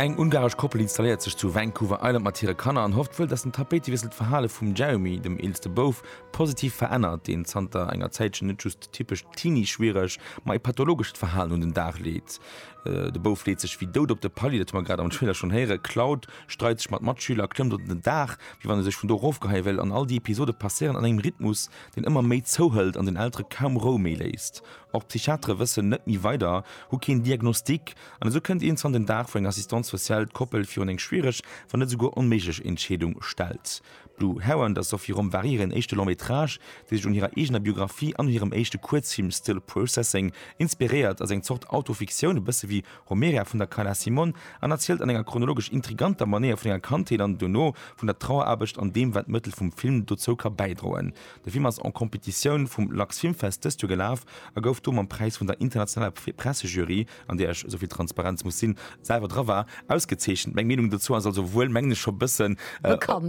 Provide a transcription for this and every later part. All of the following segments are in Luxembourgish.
Eng ungaresch Koppel installéiert sech zu Vancouver Island mat hire Kanner an hofft wuel, datt den Tapéitewiessel d'Verhale vum Jeremy, dem eelste Bouf, positiv verännert, deen zanter enger Zäitchen net just typescht Teenie-schwiereg, ma e pathologescht Verhalen un den Dag leet. De Bouf leet sech wéi dout op de Palier, dat hu mer grad am Trailer schonn héieren. D'Cloud streit sech mat Matschüler, klëmmt op den Daach, wéi wann e sech vun do erofgeheie wéll. An all déi Episode passéieren an engem Rhythmus, deen ëmmer méi zouhëlt an den Eltere kaum Rou méi léisst. Och d'Psychiatere wëssen net méi weider, hu keen Diagnostic an esou kënnt een zanter den Dag, wou eng Assistante sociale d'Koppel virun eng schwiereg, wann net esouguer onméiglech Entscheedung stellt. Blue Heron der Sophie Rombary hiren éischte Long-métrage, dee sech un hirer eegener Biographie an un hirem éischte Kuerzfilm Still Processing inspiréiert, ass eng Zort Autofiktioun, e bësse wéi Romeria vun der Carla Simon, an erzielt an enger chronologesch intriganter Manéier vun enger Kandheet an dono vun der Traueraarbecht an deem, wat d'Mëttel vum Film dozou ka bäidroen. De Film ass en Competitioun vum LAX Filmfest dëst Joer gelaf a gouf do mam Präis vun der internationaler Pressejury an där ech, esou vill Transparenz muss sinn, selwer dra war, ausgezeechent. Meng Meenung dozou ass also wuel, mengen ech, scho e bëssen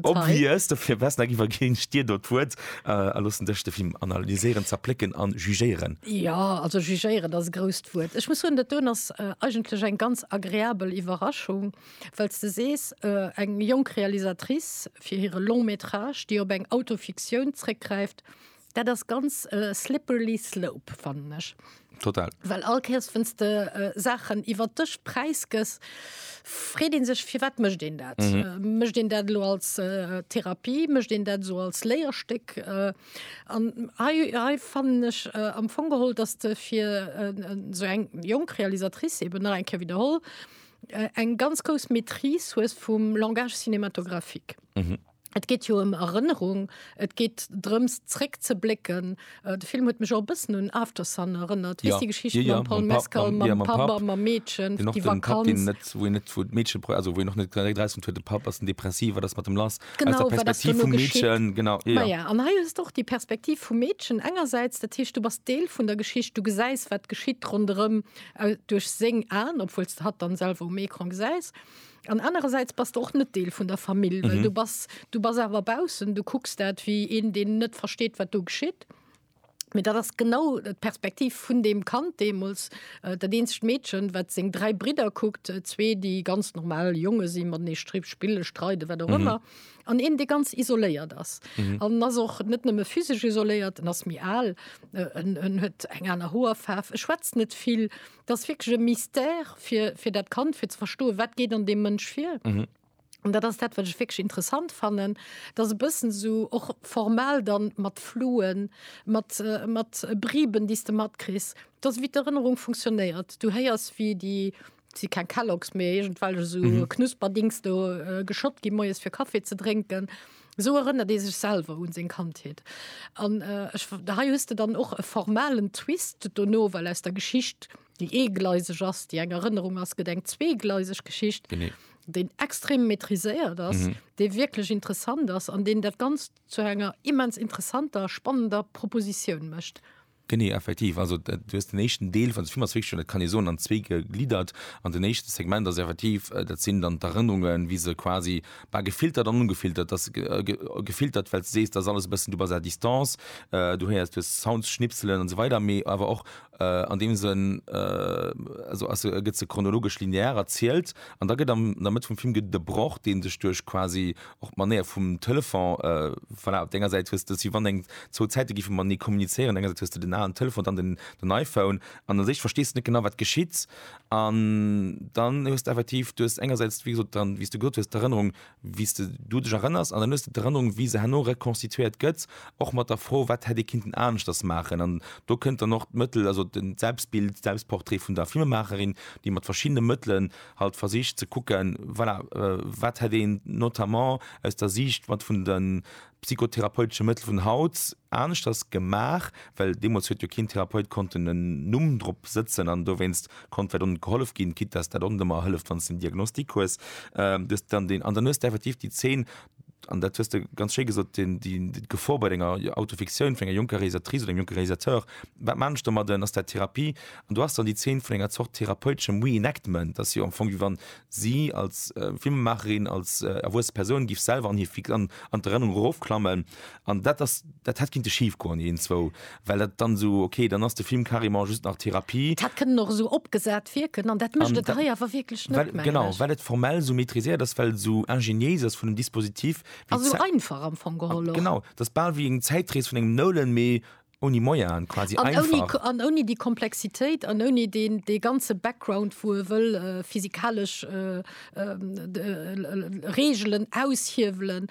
obvious. Dofir, Wesneck, iwwerginn ech dir do d'Wuert a loossen dech de Film analyséieren, zerplécken an jugéieren. Jo, also jugéieren ass e grousst Wuert. Ech muss soen, dat doen ass eigentlech eng ganz agreabel Iwwerraschung, well s de sees, eng jonk Realisatrice fir hire Long-métrage, déi op eng Autofiktioun zréckgräift, Dat ass ganz äh, slippery slope fannen ech. Total. Well all Käes wënns de äh, Saachen iwwer dech präisgëss, freet een sech fir wat mëscht een dat? Mhm. Äh, mëscht een dat lo als äh, Therapie, mëscht een dat so als Léierstéck? Äh, an hei, hei fannen ech äh, am Fong geholl, dass de fir äh, sou eng jonk Realisatrice eben nach eng Kéier widderholl, äh, eng ganz grouss Maîtrise hues vum Langage cinématographique. Mhm. Et geet jo ëm Erënnerung, et geet drëms zréckzeblécken. De Film huet mech och e bëssen un Aftersun erënnert. Weess déi Geschicht mam Paul Mescal, mam Papp a mam Meedchen, déi Vakanz. Wou een net, wou d'Meedche, also wou een och net direkt erausfënnt, huet de Papp, ass en Depressiv, wat ass mat em lass? Aus der Perspektiv vum Meedchen, genau, jo, jo. Maja, an hei hues de och déi Perspektiv vum Meedchen engersäits, dat heescht, du bass Deel vun der Geschicht, du gesäis, wat geschitt ronderëm duerch seng Aen, obwuel s de hatt dann selwer um Ecran gesäis. An anerersäits bass de och net Deel vun der Famill, well du bass, du bass awer baussen, du kucks dat wéi een, deen net versteet, wat do geschitt. Mee dat ass genau d'Perspektiv vun deem Kand deemools, dat eenzegt Meedchen, wat seng dräi Bridder kuckt, zwee, déi ganz normal Jonge si, matenee stri spille, streiden, wat och ëmmer, an een, dee ganz isoléiert ass. An en ass och net nëmme physesch isoléiert, en ass méi al, en huet eng aner Hoerfaarf, e schwätzt net vill. Dat ass wierklech e Mystère fir, fir dat Kand, fir ze verstoen, wat geet an deem Mënsch vir. Mhm. An dat ass dat, wat ech wierklech interessant fannen, dass e bëssen esou och formal dann mat Fluen, mat, mat Briben, déi s de matkriss, dass wéi d'Erënnerung funktionéiert. Du héiers, wéi déi, et si keng Kellogs, mee iergendwelch esou Knusperdings do geschott gi moies fir Kaffi ze drénken. Esou erënnert ee sech selwer un seng Kandheet. An hei hues de dann och e formalen Twist dono, well aus der Geschicht, déi eegleiseg ass, déi eng Erënnerung ass, gëtt eng zweegleiseg Geschicht, déi extrem maîtriséiert ass, déi wierklech interessant ass an deen dat Ganzt zu enger immens interessanter, spannender Propositioun mécht. Genee, effektiv. Also du hues den éischten Deel vun de Film ass wierklech schon, dat kann ee soen, an zwee gegliddert. An den éischte Segment ass effektiv, dat sinn dann d'Erënnerungen, wéi se quasi, bah, gefiltert an ungefiltert, dass se gefiltert, well s de sees, dass alles e bëssen, du bass à distance, du héiers, du hues Sounds, Schnipselen an esou weider, mee awer och an deem Sënn, also ass se, gëtt se chronologesch linear erzielt. An da gëtt am, an der Mëtt vum Film gëtt et e Broch, dee sech duerch quasi Och d'Manéier vum Telefon, voilà, op denger Säit hues de, si wann eng zwou Zäite géife matenee kommunizéieren, enger Säit hues de den alen Telefon, dann den iPhone an u sech verstees de net genau, wat geschitt. An dann hues de effektiv, du hues engersäits, wéi gesot, dann, wéi s de gesot hues, d'Erënnerung, wéi s de du dech erënners an dann hues de d'Erënnerung, wéi se herno rekonstituéiert gëtt, och mat der Fro, wat hätt ee kinnten aneschters maachen. An do kënnt dann och d'Mëttel, also de Selbstbild, Selbstportrait vun der Filmemaacherin, déi mat verschiddene Mëttelen halt versicht ze kucken, voilà, wat hätt een notamment aus der Siicht mat vun de psychotherapeutesche Mëttel vun haut aneschters gemaach, well deemools huet jo keen Therapeut konnten en Numm drop sëtzen an dowéinst konnt vläicht och net gehollef ginn, quitte dass dat och net ëmmer hëlleft, wann s de en Diagnostic hues. Du hues dann deen, an dann hues de effektiv déi Zeen an dat hues de ganz schéi gesot, d'Gefor bei enger Autofiktioun vun enger jonker Realisatrice oder engem jonke Realisateur, wat man ech domadden, ass dat Therapie? An do ass dann déi Zeen vun enger Zort therapeuteschem Reenactment, dass jo am Fong, wéi wann si als Filmemacherin, als erwuesse Persoun géif selwer an hir an d'Erënnerung erofklammen, an dat ass, dat hätt kinnte schif goen, déi een zwou well dat dann esou okay, dann ass de Film carrément just nach Therapie. Dat kënnen och esou opgesat wierken an dat mécht et hei awer wierklech net, mengen ech. Genau, well et formell esou maitriséiert ass, well et esou ingéniéis ass vun dem Dispositif. A sou einfach am Fong geholl och. Genau, et ass bal wéi eng Zäitrees vun engem Nolan, mee ouni Moyaen quasi, einfach. An ouni déi Komplexitéit an ouni dee ganze Background, wou e wëll physikalesch Reegelen aushiewelen.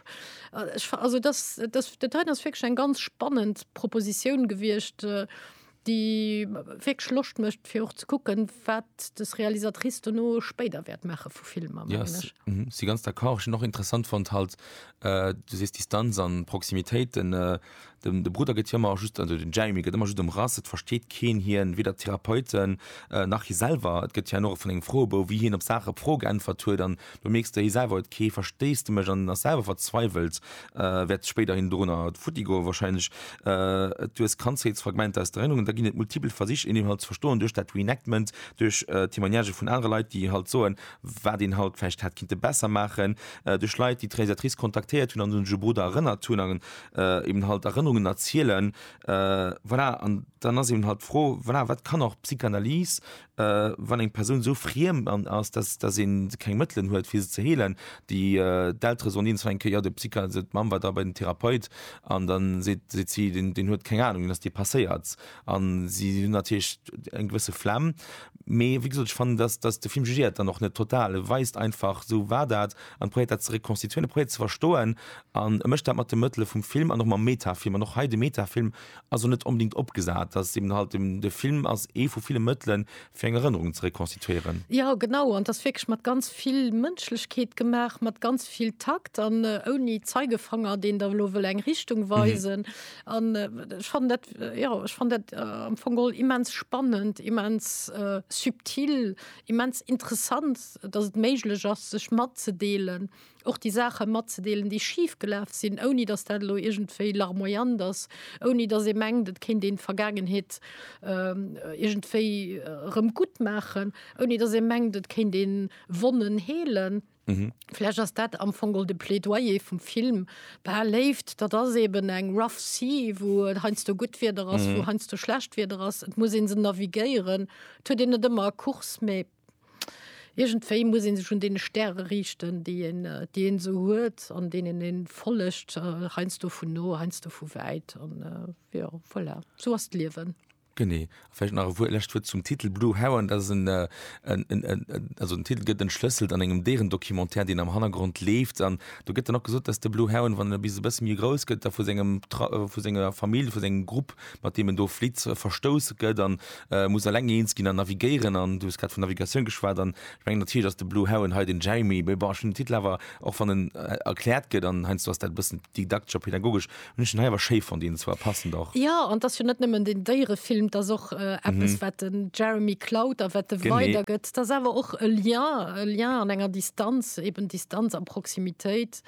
Ech, also dass, dass dat hei ass wierklech eng ganz spannend Proposition gewiescht, déi wierklech Loscht mécht, fir och ze kucken, wat des Realisatrice dono spéider wäert maache vu Filmer, mengen ech. Yes, mhm, si ganz d'accord. Ech hunn och interessant fonnt halt, du sees Distanz an Proximitéit, den Den de Brudder gëtt jo ëmmer just, also den Jeremy gëtt ëmmer just ëmrass, et versteet keen hien, weder d'Therapeuten nach hie selwer. Et gëtt hien och vun engem Froebou, wéi hien op Saache op Fro geäntwert huet an do mierks de hie selwer huet kee Versteesdemech an ass selwer verzweiwelt, wäert spéiderhin dorunner futti goe wahrscheinlech. Et duess Kandheetsfragmenter aus d'Erënnerungen, da ginn et multipel Versich een halt ze verstoen duerch dat Reenactment, duerch Témoignagë vun anere Leit déi halt soen, wat een halt vläicht hätt kinnte besser maachen, duerch Leit déi d'Realisatrice kontaktéiert hunn an un de Brudder erënnert hunn. äh, eben halt Erënnerungen erzielen äh, voilà. an dann ass eben halt froh voilà, wat kann auch Psychanalys äh, wann eng Person so friem an ass dass da se keng Mëttelen huet fir se ze heelen die äh, d'ltre so eens enke ja de Psycha se Mam war da bei den Therapeut an dann se se sie den den huet keng Ahnung dass dir passéiert an sie hun natürlich eng gewësse Flamm mee wie gesagt, fan dass dass de Film jugiert dann noch net total weist einfach so war dat an proet dat ze rekonstituieren proet ze verstoen An e mécht dat mat de Mëttele vum Film an och mam Metafilm. An och hei, de Metafilm ass elo net onbedéngt opgesat. Dat ass eben halt dem, de Film ass ee vu ville Mëttelen, fir eng Erënnerung ze rekonstituéieren. Jo, genau. An et ass wierklech mat ganz vill Mënschlechkeet gemaach, mat ganz vill Takt an ouni Zeigefanger, deen der elo wëll eng Richtung weisen. An ech fannen dat, jo, ech fannen dat am Fong geholl immens spannend, immens subtil, immens interessant, datt et méiglech ass, sech matzedeelen. och déi Saache matzedeelen, déi schif gelaf sinn, ouni datt dat elo iergendwéi larmoyant ass, ouni datt ee mengt, et kéint een d'Vergaangenheet iergendwéi erëm gutt maachen, ouni datt ee mengt, et kéint ee Wonnen heelen. Vläch ass dat am Fong och de Plädoyer vum Film, Bah, Léift, dat ass eeben eng rough sea, wou et heiansdo gutt Wieder ass, wou heiansdo schlecht Wieder ass, et muss ee se navigéieren. Et huet een net ëmmer e Kurs, mee Irgendwéi muss een sech un deene Stäre riichten, déi een, déi een esou huet an deenen een follegt, heiansdo vun no, heiansdo vu wäit an jo, voilà, esou ass d'Liewen. Genee. A vläicht nach e Wuert, e lescht Wuert zum Titel Blue Heron, dat ass en, also den Titel gëtt entschlësselt an engem Déierendocumentaire, deen am Hannergrond leeft an do gëtt dann och gesot, dass de Blue Heron, wann en e bis e bësse méi grouss gëtt, da vu sengem, vu senger Famill, vu sengem Grupp, mat deem en do flitt, verstouss gëtt a muss eleng eens ginn an navigéieren. An du hues grad vun Navigatioun geschwat an ech mengen natierlech ass de Blue Heron hei den Jeremy, mee bon, ech hunn den Titel awer, och wann en erkläert gëtt an heiansdo ass dat e bëssen didaktesch a pedagogesch, hunn ech den hei awer schéi fonnt innen zwar, passend och. Jo, an 't ass jo net nëmmen den Déierefilm, 't ass och eppes, wat de Jeremy klaut a wat e weidergëtt. 't ass awer och e Lien, e Lien an enger Distanz, eben Distanz a Proximitéit.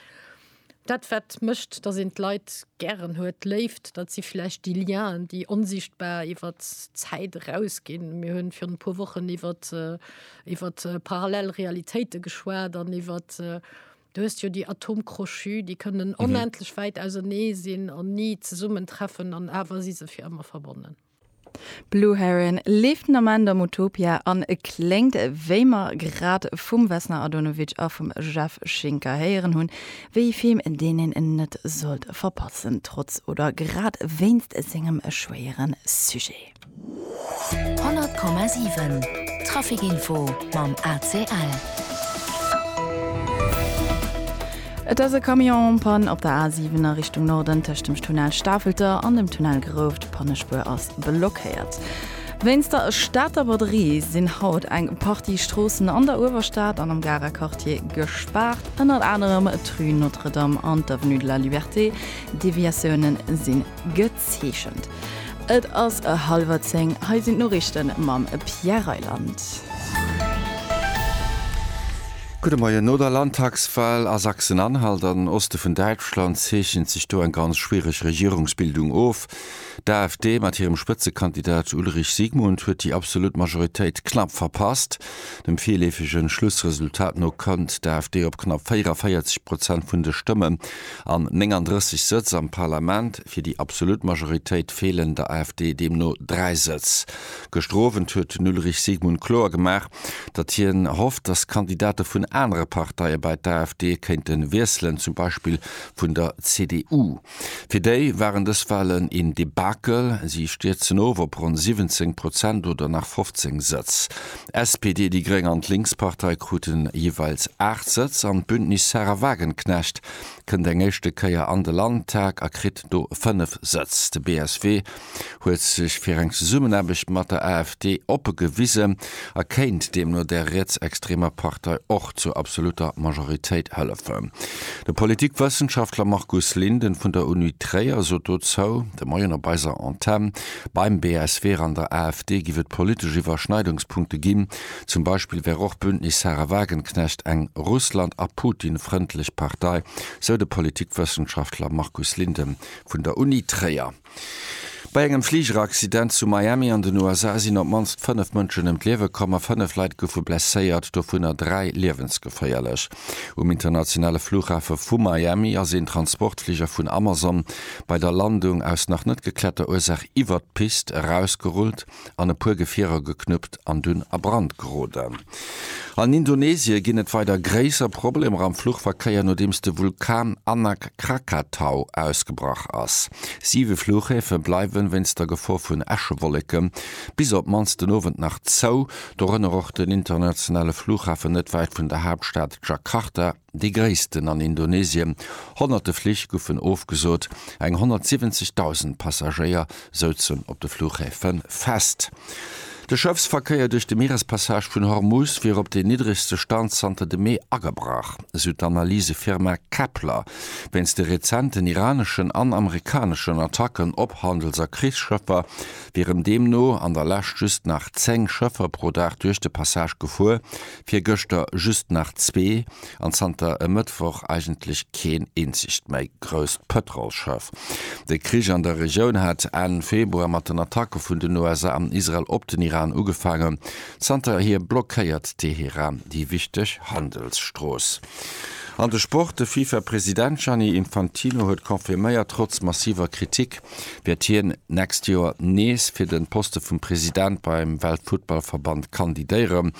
Dat wat mécht, datt een d'Leit gären huet, d'Léift, dat si vläicht déi Lienen, déi onsichtbar iwwer d'Zäit eraus ginn. Mir hunn virun e puer Wochen iwwert iwwert parallel Realitéite geschwat an iwwert, du hues jo déi Atome crochus, déi kënnen onendlech wäit ausenee sinn an ni zesummen treffen an awer si se fir ëmmer verbonnen. Blue Heron leeft den Ament am Utopia an kléngt, wéi mer grad vum Vesna Adonovic a vum Jeff Schinker héieren hunn, wéi ee Film, deen een net sollt verpassen, trotz oder grad wéinst sengem schwéiere Sujet. 100,7 Trafic Info mam ACL. Et ass e Camion en Panne op der A7 a Richtung Norden. Tëscht dem Tunnel Stafelter an dem Tunnel Grouft, d'Pannespuer ass blockéiert. Wéinst der Stater Braderie sinn haut eng Partie Stroossen an der Uewerstad an am Garer Quartier gespaart. Ënnert anerem d'Rue Notre-Dame an d'Avenue de la Liberté. Deviatiounen sinn geplot. Zeechent. Et ass e hallwer zéng, hei sinn d'Noriichten mam Pierre Reyland. Gudde Moien. No der Landtagswahl a Sachsen-Anhalt an den Oste vun Däitschland zeechent sech do eng ganz schwiereg Regierungsbildung of. D'AfD mat hirem Spëtzekandidat Ulrich Siegmund huet déi absolut Majoritéit knapp verpasst. Dem virleefege Schlussresultat no kënnt d'AfD op knapp 44 Prozent vun de Stëmmen an 39 Sëtz am Parlament. Fir déi absolut Majoritéit feelen der AfD deemno dräi Sëtz. Gëschter Owend huet den Ulrich Sigmund kloer gemaach, datt hien hofft, datt Kandidate vun anere Parteie bei d'AfD kéinte wiesselen, zum Beispill vun der CDU. Fir déi waren dës Walen een Debakel, si stierzen of op ronn 17 Prozent oder nach 15 Sëtz. SPD, déi Gréng an d'Linkspartei kruten jeeweils 8 Sëtz an d'Bündnis Sahra Wagenknecht kënnt eng éischte Kéier an de Landtag a kritt do 5 Sëtz. De BSW huet sech fir eng Zesummenaarbecht mat der AfD oppe gewisen a kéint deemno där rietsextremer Partei och zur absolutter Majoritéit hëllefen. De Politikwëssenschaftler Markus Linden vun der Uni Tréier sot dozou de Moien op eiser Antenn, Beim BSW an der AfD giff et politesch Iwwerschneidungspunkte ginn, Zum Beispill wär och d'Bündnis Sahra Wagenknecht eng Russland a Putin frëndlech Partei, sou de Politikwëssenschaftler Markus Linden vun der Uni Tréier. Bei engem Fligeraccident zu Miami an den USA sinn op d'mannst fënnef Mënschen ëm d'Liewe komm a fënnef Leit goufe blesséiert, dovunner dräi liewensgeféierlech. Um internationale Flughafe vu Miami ass een Transportfliger vun Amazon bei der Landung aus nach net gekläerter Ursaach iwwert d'Pist erausgerullt. an e puer Gefierer geknuppt an dunn a Brand geroden. An Indonesie ginn et weider gréisser Problemer am Fluchverkéier, nodeems de Vulkan Anak Krakatau ausgebrach ass. Siwe Fluchhäfe bleiwen wéinst der Gefor vun Äschewolleke bis op d'mannst den Owend nach zou, dorënner och den internationale Fluchhafen net wäit vun der Haaptstad Jakarta. Déi gréissten an Indonesien. Honnerte Flich goufen ofgesot, eng 170.000 Passagéier souzen op de Fluchhäfe fest. De Schëffsverkéier duerch de Mierespassage vun Hormuz wier op deen niddregste Stand zanter dem Mee agebrach, esou d'Analysefirma Kpler, wéinst de rezenten iraneschen an amerikaneschen Attacken op Handels a Krichsschëffer wieren deemno an der Lescht just nach 10 Schëffer pro Dag duerch de Passage gefuer, Virgëschter just nach zwee an zanter e Mëttwoch eigentlech keen eenzegt méi grousst Pëtrolsschëff. De Krich an der Regioun hat Enn Februar mat den Attacke vun den USA an Israel op den Iran ugefaangen. Zanterhier blockéiert Teheran déi wichteg Handelsstrooss. An de Sport, De FIFA-President Gianni Infantino huet confirméiert, trotz massiver Kritik wäert hien d'nächst Joer nees fir den Poste vum President beim Weltfuttballverband kandidéieren.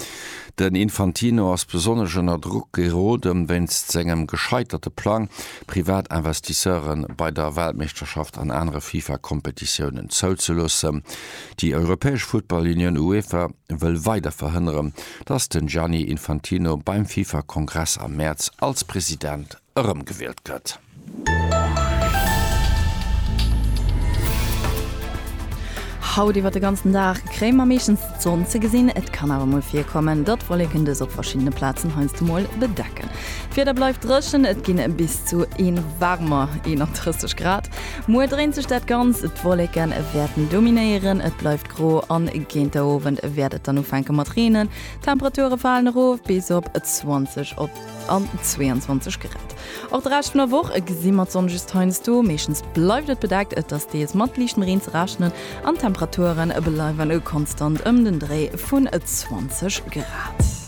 Den Infantino ass besonnesch ënner Drock geroden, wéinst sengem gescheiterte Plang, privat Investisseuren bei der Weltmeeschterschaft an anere FIFA-Kompetitiounen zouzeloossen. Déi europäesch Futtball-Unioun UEFA wëll weider verhënneren, datt den Gianni Infantino beim FIFA-Kongress am Mäerz als President erëmgewielt gëtt. Haut iwwer de ganzen Dag kréie mer meeschtens d'Sonn ze gesinn, et kann awer mol virkommen, datt Wolleken dës op verschiddene Plazen heiansdo mol bedecken. D'Wieder bleift dréchen, et ginn bis zu ee waarmer 31 Grad. Muer dréint sech dat Ganzt, d'Wolleke wäerten dominéieren, et bleift gro a géint der Owend wäert et dann ufänke mat reenen. D'Temperature falen erof bis op 20 op an 22 Grad. Och de Rescht vun der Woch gesi mer d'Sonn just heiansdo, meeschtens bleift et bedeckt, et ass deels mat liichtem Reen ze rechnen an d'Temperature bleiwe konstant ëm den Dréi vun 20 Grad.